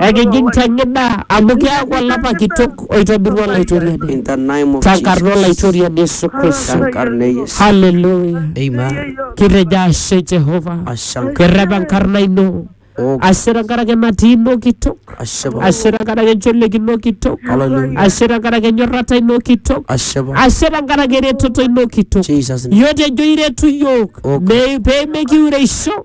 Ekijing te gida amu keaku olapa kitok oitobirua Olaitoriani. In the name of Tenkarna Jesus. Olaitoriani Yesu Kristo. Tenkarna e Yesu. Haleluya. Amen. Kitejo ashe Jehova. Ashanka. Kirrep enkarna ino. Oh, Ashe tenkaraki enatii ino kitok. ashe Baba. Ashe tenkaraki encholiek ino kitok. Hallelujah. Ashe tenkaraki enyorrata ino kitok. Ashe Baba. Ashe tenkaraki eretoto ino kitok. Jesus name. Yiok tejo iretu yiok Oh, God. me- pee mekiureisho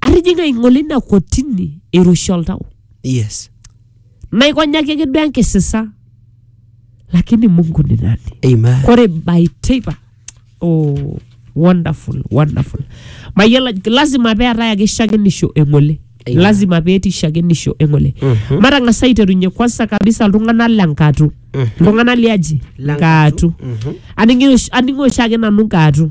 atijing'a aing'ole ina kotini eiroshi oltau Yes. naikonyaki ake duo enkisisa lakini mungu ni nani Amen. kore by teipa oh, wonderful wonderful mayiolo ajo- lazima peetae ake shakenisho eng'ole Amen. lazima petii shakenisho eng'ole Mhm. matang'asa aiterunye kwanza kabisa iltung'anak le nkatu Mhm. iltung'anak liaji Lenkatu. nkatu Mhm. aning'o oshi- aning'o oshiake nanu nkatu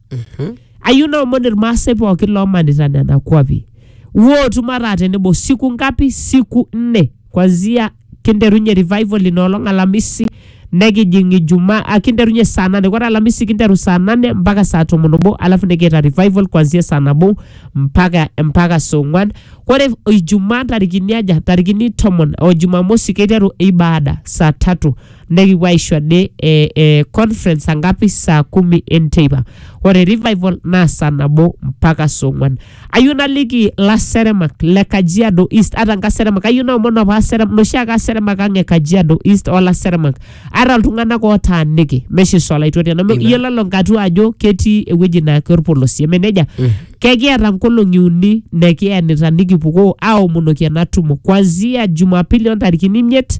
Mhm. ayieu naomon irmaasai pookin loomanita nena kuapi wootum ataa tenebo siku ngapi siku nne kwanzia kinterunye revival ina olong alamisi nekijing ijumaa ah, kinterunye saa nane ore alamisi kinteru saa nane mpaka saa tomon obo alafu nikiita revival kwanzia saa nabo mpaka mpaka saa ong'wan ore ijumaa ntarikini aja ntarikini tomon o jumamosi keiteru ibaada saa tatu nekipuo aisho ade eh, eh, conference angapi saa kumi enteipa ore revival naa saa nabo mpaka saa ong'uan ayieu naliki ilaseremak le kajiado east ata nkaseremak ayieu naomon apa aserem noshi ake aseremak ang e kajiado east olaseremak ata iltung'anak ootaaniki mesho isolaitoria neme Amen. iyiolo lelo nkatua ajo ketii ewueji naa keorpolosie eme nejia kekiata nkolong'i uni nekienita nikipukoo aomonoki ena tumo kuanzia jumapili ontarikini imiet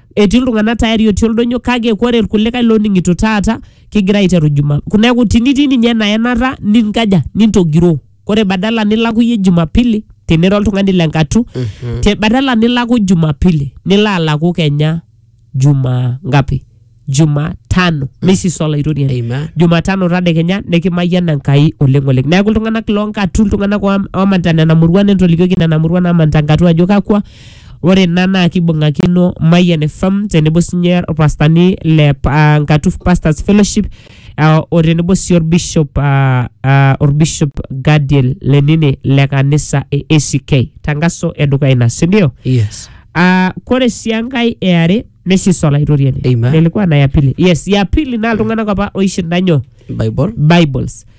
etii iltung'anak tayari otii oldonyo kake kore irkulikae loning'ito taata kigira aiteru juma neeku tinitii ninye ena enata ninkaja nintogiroo kore badala nilaku iyie jumapili tinira oltung'ani le nkatu te badala nilaku jumapili nilo alaku kenya juma ngapi jumatano misisa olaitoriani Amen. jumatano tadekenya nikimayian enkai oleng oleng neeku iltung'anak loonkatu iltung'anak oam- omanita nena muruan entolikioki nena muruan namanita nkatu ajo kakwa Ore ina naa kibung'akino Mayian FM tenebo sinye orpastani le uh, Ngatuf Pastors Fellowship uh, o tenebo sii orbishop uh, uh, orbishop Gadiel Lenini le kanisa e ACK tangaso edukuya ina sindio? Yes. Uh, kore sii enkae eare neisisa olaitoriani Amen. lelikuwa na ya pili yes ya pili naa iltung'anak apa oishinda nyoo Bible. bibles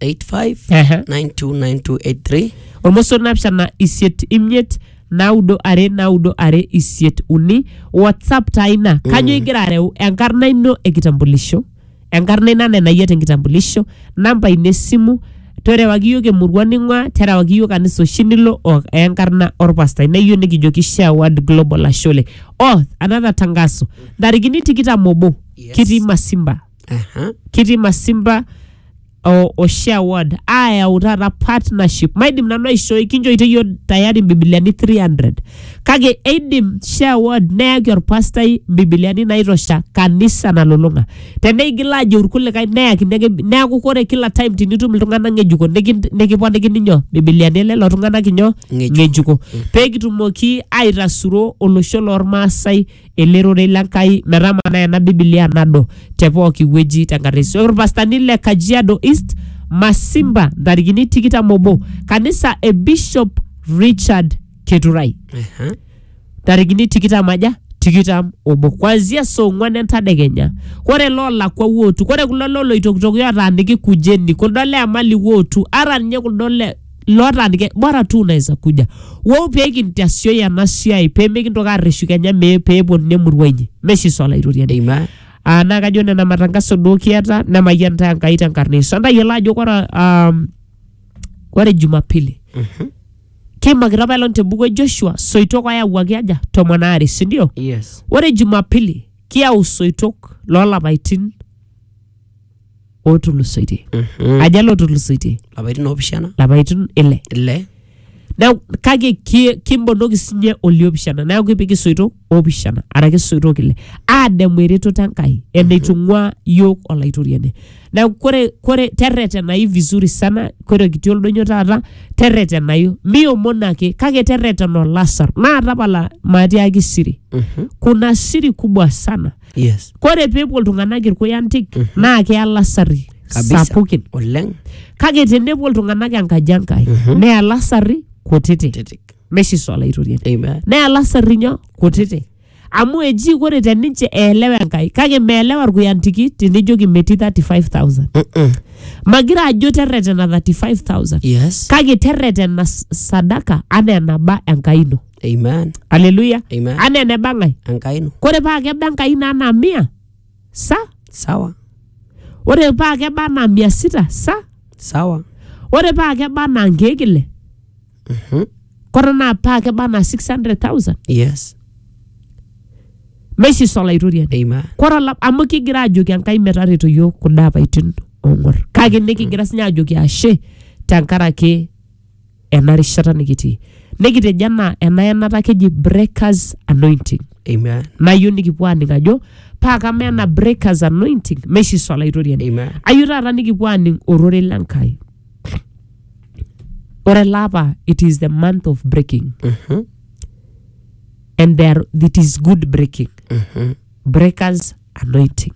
0785 Ehe. 929283 olmoso naapishana isiet imiet naudo are naudo are isiet uni whatsapp taa ina kanyo igira areu enkarna ino ekitambulisho enkarna ina nenayia tenkitambulisho namba ino esimu terewaki yiok emurua ning'ua terewaki yiok kanisa oshi nilo o enkarna orpastai neyieu nikijoki share word global ashole oh another tangaso ntarikini tikitam obo Yes. kitii masimba Aha. kitii masimba o, o share word ayau taata partnership maidim nanu aishoi kinchoito iyio tayari mbibiliani 300 kake eidim share word neyaki orpastai mbibiliani naitosha kanisa nalulung'a teneigil ajo irkulikae neyakini ake neaku kore kila time tinitum iltung'anak ng'ejuko nikin- nikiponikini nyoo mbibiliani elelo tung'anak inyoo Ng'ejuko. ng'ejuko pee kitumoki aitasuro olosho lormaasai ele rorei le Nkai metamanaa ena Biblia nado te pooki wueji tenkata e Yesu. Ore irpastani le Kajiado East, Masimba, ntarikini tikitam obo, kanisa e Bishop Richard Keturai Ehe. ntarikini tikitam aja tikitam obo kuanzia saa ong'uan entadekenya ore loolakua wootu ore kulo loloitokitoki otaaniki kujeni kuldo le amali wootu ata ninye kuldo le lotaanike bora tu unaweza kuja wou pee kintasioyi ena siai pee mikintoki arreshu kenya mee pee eponuni emurua inyi meshi swala itoriani Amen. Ah, naa kajo nena matangaso duo kiata nemayian taa Enkai tenkarna Yesu. Entayiolo ajo kore um, kore Jumapili keimakita apa elong te buku e Joshua soitok oyawuaki aja tomon aare si ndio? Yes. Ore Jumapili kiyau soitok loolapaitin ootulusoitie Mhm. aja ele otulusoitie lapaitin oopishana lapaitin ile ile neeku kake ki- kimbonoki sinye oliopishana neeku kipik isoito oopishana araki isoito ile aademu eretoto enkai eneitung'ua yiok olaitoriani neeku kore kore terretenayu vizuri sana kore kitii oldonyo taata terretenayu miomon ake kake terretena olasar naa tapala maatiaki siri Mhm. kuna siri kubwa sana yes kore pepuo iltung'anak irkuyantik naa keya lasarri kabisa sapukin oleng kake tenepuo iltung'anak enkaji enkai neya lasarri kutiti titik meshiso olaitoriani amen neya lasarri nyoo kutiti amu eji kore teninche eelewa enkai kake meelewa irkuyantiki tinijoki metii 35000 Mm-mm. magira ajo terretena 35000 yes kake terretena s- sadaka anaa enaba enkai ino Amen. aleluya Amen. anaa eneba ng'ae Enkai ino. kore paa keba enkai naa anaa mia sa Sawa. ore paa keba anaa mia sita sa Sawa. ore paa keba anaa nkeek ile Mhm. kore naa paa keba anaa 600000 Yes. meisisa olaitoriani Amen. kore ola- amu kigira ajoki enkai metareto yiok kuda apaitin ong'or kake nikigira sinye ajoki ashe tenkaraki ena rishata nikitii nikitejo anaa ena yenata keji breakers anointing Amen. nayieu nikipuo aaning ajo paa kama ena breakers anointing meshiso olaitoriani Amen. ayieu taata nikipuo aaning ororei le Nkai ore ele apa it is the month of breaking Mhm. and there it is good breaking Mhm. breakers anointing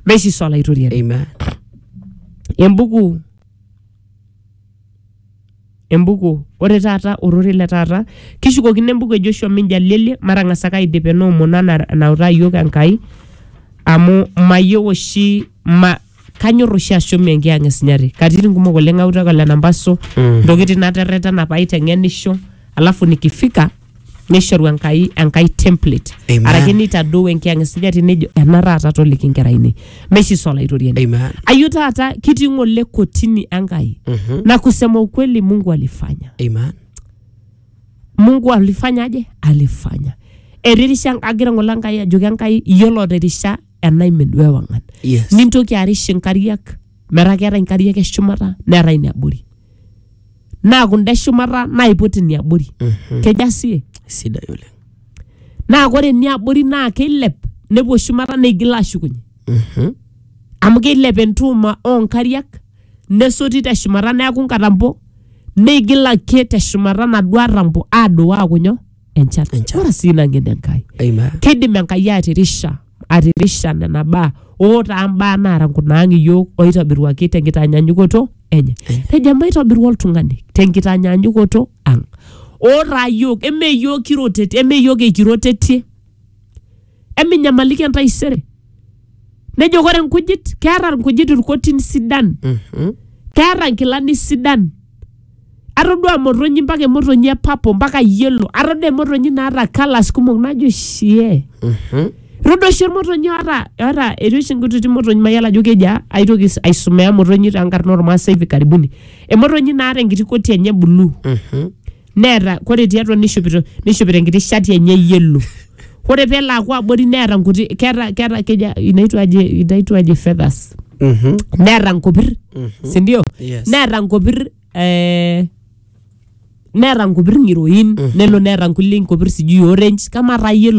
meshiso olaitoriani Amen. embuku embuku ore taata ororei le taata kishukokino embuku e Joshua Minjaliele matang'as ake aidip ena omon ana enautaa iyiok Enkai amu mayieu oshi ma kanyorr oshi ashom enkiyang e Sinyati katitin kumok oleng autaki ole Nambaso Mm. ntokitin naterretena paiteng'enisho alafu nikifika neishoru enkai enkai template Amen. araki neitadou enkiyang esujati nejo ena taata toliki nkera ainei meshiso olaitoriani Amen. ayu taata kitii ng'ole kotini enkai Mhm. na kusema ukweli mungu alifanya Amen. mungu alifanya aje alifanya eririsha agira ng'ole enkai ajoki enkai iyiolo otirisha enaimin duo ewang'an Yes. nintoki arish inkariak metaa keetae inkariak eshumata neetae iniabori naa kunda eshumata naiput iniabori keja sie Sidai oleng. naa kore iniabori naa keilep nepuo shumata neigil ashukunye Mhm. amu keilep entuuma oonkariak nesoti teshumata neaku nkatampo neigil ake teshumata naduo atampo aduo aaku nyoo enchan Enchan. ore sii ina ng'eno enkai Amen. kidim enkai atirisha atirisha nena baa ootaa mbaa naara nkunaang iyiook oitobiruaki tenkitanyanyukoto enye tejo emaitobiru oltung'ani tenkitanyanyukoto ang ootaa iyiook eme iyiook kirotetie eme iyiook eikirotetie eminyamaliki entaisere nejo kore nkujit keeta nkujit irkotin sidan Mhm. keeta nkilani sidan atodua motonyi mpaka emotonyi e papo mpaka yelo atodua emotonyi naata kalas kumok najo shie Mhm. Rodo oshi motonyi oata oata etii oshi nkutiti motonyi mayolo ajo kejaa aitoki s- aisomea motonyi te nkarna ormaasai hivi karibuni. Emotonyi naata enkiti koti enye blue. Mhm. neeta kore tiatua nishopito nishopito enkiti shati enye yellow kore pelo aku abori neeta nkuti keeta keeta keja inaitwa aje inaitwa aje feathers Mhm. neeta nkopir sindio Yes. neeta nkopir eh, neeta nkopir ng'iroin nelo neeta nkulie nkopir sijui orange kama taa yelo